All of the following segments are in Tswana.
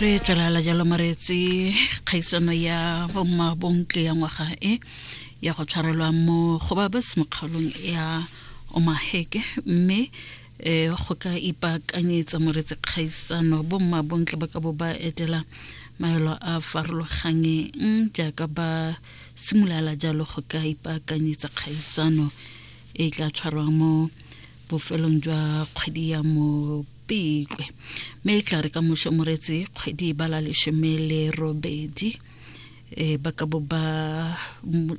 re tlalala jalo mareetse kgaisano ya bomma bontle ya ngwaga e ya go tshwarelwa mo go ba ba semokgaolong ya omaheke mme um go ka ipaakanyetsa moretse kgaisano bomma bontle ba ka bo ba etela maelo a farologangeng jaaka ba simolala jalo go ka ipaakanyetsa kgaisano e tla tshwarwang mo bofelong jwa kgwedi ya mopetlwe mme e tla re ka moso moretsi kgwedi e bala lesome le robedi e ba ka bo ba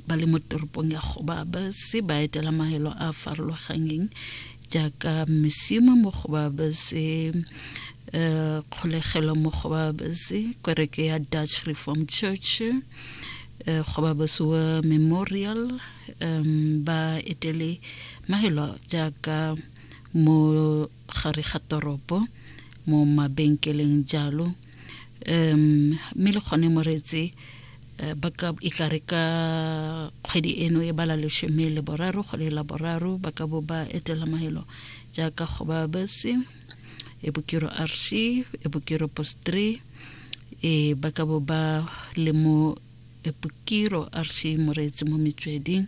ba le mo toropong ya go ba ba se ba etela maelo a farologanyeng jaaka mesimo mo go ba ba se eh, kgolegelo mo go ba ba se kereke ya dutch reform church eh, go ba ba se wa memorial um ba etele mahelo jaaka mo gare ga toropo mo mabenkeleng jalo um mme le kgone moretse eh, ba ka e ka re ka kgwedi eno e bala lesome le boraro go le la boraro ba ka bo ba etela mahelo jaaka go ba bese e bokiro rc e bokiro post 3 e ba ka bo ba le mo epokiro a re se mo reetse mo metsweding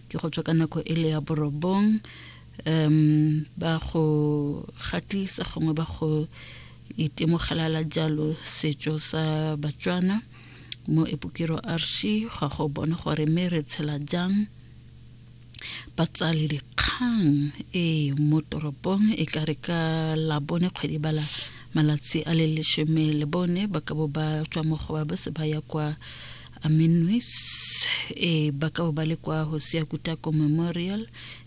ke go tswa ka nako e le ya borobong um ba go gatisa gongwe ba go itemogelela jalo setso sa batswana mo epokiro rc ga go bone gore mme re tshela jang batsali dikgang e mo toropong e ka re ka labone kgwedi bala malatsi a le leshome le bone ba ka bo ba tswa mo go ba ba se ba ya kwa aminwis e ba ka bo ba le kwa go sia kutako memorial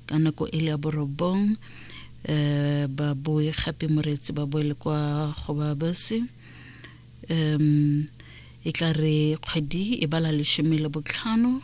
ka nako e le ya borobong um ba boe gape moreetsi ba boele kwa go ba base um e ka re kgwedi e bala leshome le botlhano